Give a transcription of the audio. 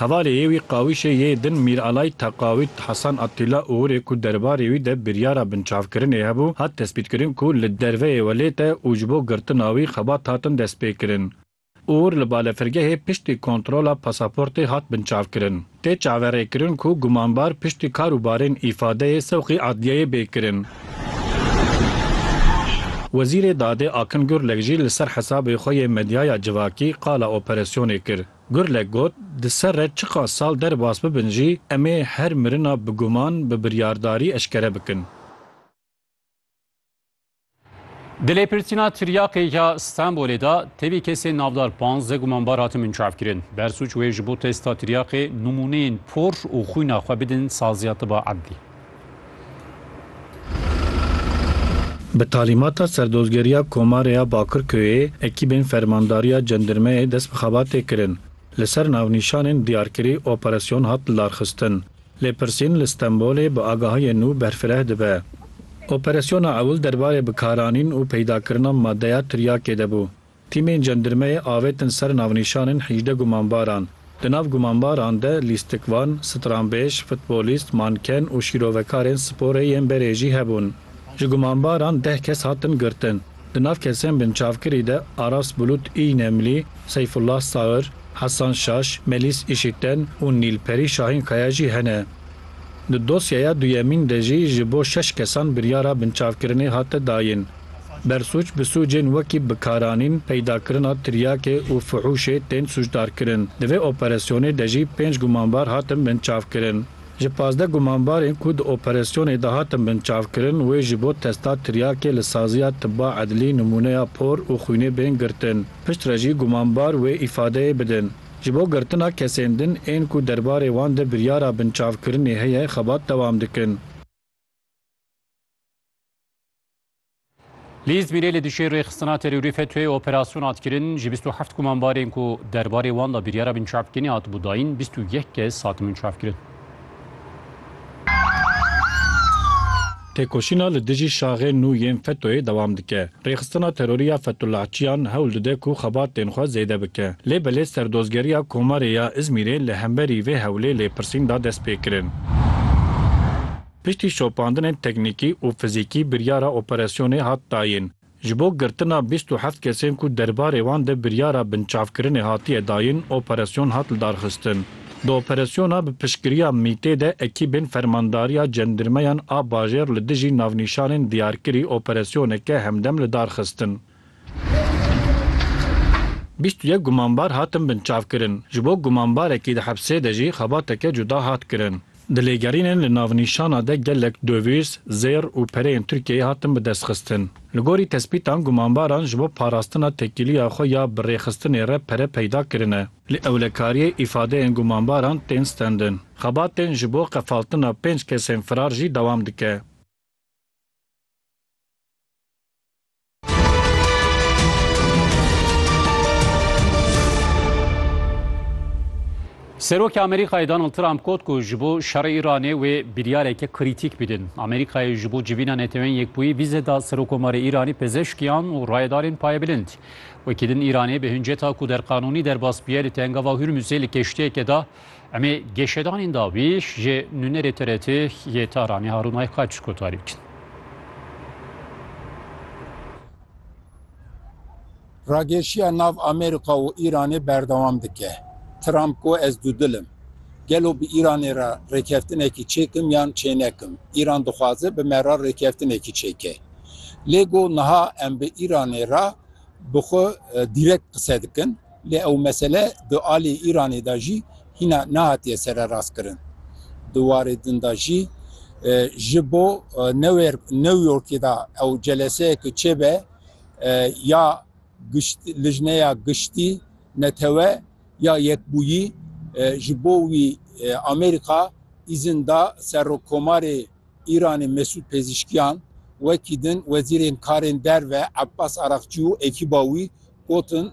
Hevalê yê wî qawîşê yê din Mîralay Teqawît Hasan Attîla Uğurê ku derbarê wî de biryara binçavkirinê hebû, hat destpîtkirin ku li derveyê welêt e û ji bo girtina wî xebat hatin destpêkirin. Uğur li balefirgehê piştî kontrola pasaportê hat binçavkirin. Tê çaverêkirin ku gumanbar piştî kar û barên îfadeyê sewqî adliyeyê bê kirin. Wezîrê Dadê Akin Gurlek jî li ser hesabê xwe yê medyaya civakî qala operasyonê kir. Gurlek got, Di ser re çiqas sal derbas bibin jî em ê her mirina bi guman, bi biryardarî eşkere bikin. Di lêpirsîna tiryaqê ya Stenbolê de tevî kesên navdar panzdeh gumanbar hatin binçavkirin. Bersûc wê ji bo testa tiryaqê nimûneyên por û xwîna xwe bidin Saziya Tiba Ebdî. Bi talîmata Serdozgeriya Komarê ya Bakirköyê ekîbên Fermandariya Cendirmeyê dest bi xebatê kirin. Li ser navnîşanên diyarkirî operasyon hat lidarxistin. Lêpirsîn li Stenbolê bi agahiyên nû berfireh dibe. Operasyona ewil derbarê bikaranîn û peydakirina madeya tiryakê de bû. Tîmên cendirmeyê avêtin ser navnîşanên hîjdeh gumanbaran. Di nav gumanbaran de lîstikvan, stranbêj, futbolîst, manken û şîrovekarên sporê yên berê jî hebûn. Ji gumanbaran deh kes hatin girtin. Di nav kesên binçavkirî de Aras Bulut Îynemlî, Seyfullah Sair, Hesan Şaş, Melîs Îşiten û Nîlperî Şahînkaya jî hene. Di dosyeya duyemîn de jî ji bo şeş kesan biryara binçavkirinê hate dayîn. Bersûc bi sûcên wekî bikaranîn, peydakirina tiryakê û fuhûşê tên sûcdarkirin. Di vê operasyonê de jî pênc gumanbar hatin binçavkirin. Ji pazdeh gumanbarên ku di operasyonê de hatin binçavkirin wê ji bo testa tiryakê li saziya tiba edlî nimûneya por û xwînê bên girtin. Piştre jî gumanbar wê îfadeyê bidin. Ji bo girtina kesên din ên ku derbarê wan de biryara binçavkirinê heye xebat dewam dikin. Li Îzmîrê li dijî rêxistina terorî FETÖ'yê operasyon hat kirin. Ji 27 kumanbarên ku derbarê wan da biryara binçavkirinê hatibû dayîn, 21 kes hatin binçavkirin. Têkoşîna li dijî şaxên nû yên FETÖ'yê dewam dike. Rêxistina terorî ya Fethullah Çiyan hewl dide ku xebatên xwe zêde bike. Lê belê Serdozgeriya Komarê ya Îzmîrê li hemberî vê hewlê lêpirsîn da dest pê kirin. Piştî şopandinên teknîkî û fizîkî biryara operasyonê hat dayîn. Ji bo girtina bîst û heft kesên ku derbarê wan de biryara binçavkirinê hatiye dayîn operasyon hat lidarxistin. Di operasyona bi piştgiriya MĪT'ê de ekîbên Fermandariya Cendirmeyan a Bajêr li dijî navnîşanên diyarkirî operasyoneke hemdem lidarxistin. Bîst û yek gumanbar hatin binçavkirin. Ji bo gumanbarekî di hepsê de jî xebateke cuda hat kirin. Di lêgerînên li navnîşana de gelek dovîz, zêr û pereyên Tirkiyeyê hatin bidestxistin. Li gorî tespîtan gumanbaran ji bo parastina tekîliya xwe ya bi rêxistinê re pere peyda kirine. Li ewlekariyê îfadeyên gumanbaran tên stendin. Xebatên ji bo qefaltina pênc kesên firar jî dewam dike. Serokê Amerîkayê Donald Trump got ku ji bo şerê Îranê wê biryareke krîtîk bidin. Amerîkayê ji bo civîna Netewên Yekbûyî vîze da Serokomarê Îranî pezeshkiyan û rayedarên payebilind. Wekî din Îranê bi hinceta ku derqanûnî derbas biye li Tengava Hurmuzê li keştiyeke da Em ê geşedanên dawî ji nûnerê TRT yê Tahranê Harûn Aykaç kotarî bikin. Rageşiya nav Amerîka û Îranê berdewam dike. Trump got ez dûdil im. Gelo bi Îranê re rêkeftinekî çêkim yan çênekim, Îran dixwaze bi me re rêkeftinekî çêke. Lê got niha em bi Îranê re bi xwe direkt qise dikin. Lê ew mesele di aliyê Îranê de jî hîna nehatiye sererastkirin. Di warê din de jî ji bo New Yorkê de ew celeseyeke çêbe ya Lijneya Giştî Netewe ya Yekbûyî ji bo wî Amerîka îzin da Serokkomarê Îranê Mesûd Pezîşkiyan wekî din wezîrên karên derve Abbas Araqçî û ekîba wî gotin